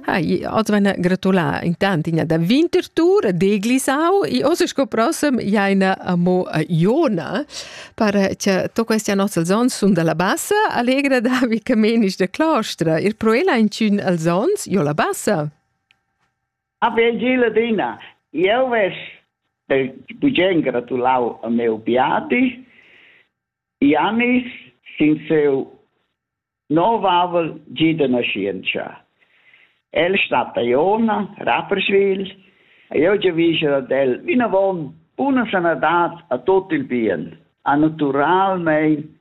Ha, oz vegna gratulà intant ina da Winterthur d'Eglisau e oz sco prossem ja ina amo a Iona per che to questa nostra zon sun dalla bassa allegra David Camenisch de Claustra ir pro ella in cun als zons jo la bassa. Ave Gila Dina, eu ves de bugen gratulau a meu biati Janis sin seu nov avel gi da naschientscha. El stat a Iona, Rapperswil, e io giavisce ad el vinavon una sanadad a tot il bien, a naturalmein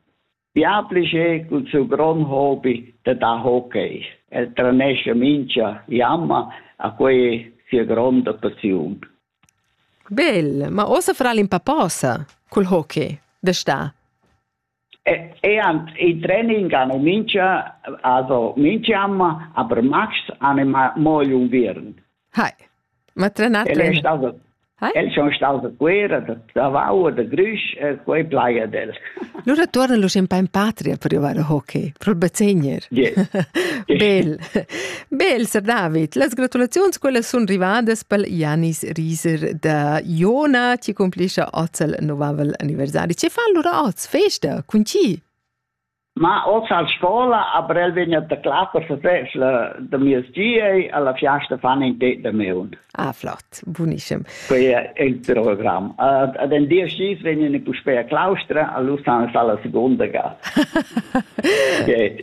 bia plische cul suo grond hobby de da hockey. El tranesce mincha jamma a quei sia gronda passiun. Bel, ma ossa fra l'impaposa cul hockey, de sta. Ean in training amo mincha also minch'an, aber max an moil unviern. Hai. Ma trenat? El è stato El sono stato a guerra, da Davao, da Grüsch, e quei playa del. Lura torna lu in in patria per jugar a hockey, pro bazegner. Yeah. Bel. Bel, Sir David, las gratulaziuns quellas sun rivadas pel Janis Rieser da Iona, chi cumplischa oz il novavel anniversari. Che fa allura oz festa? Cun chi? Ma oz a scola, a Brel vegna da classa sesess da mies giei, alla fiasta fan in det da meun. Ah, flott, bunischem. Quei è il programm. Uh, ad en dies gis vegnan i puspei a claustra, allura san sala seconda ga. okay.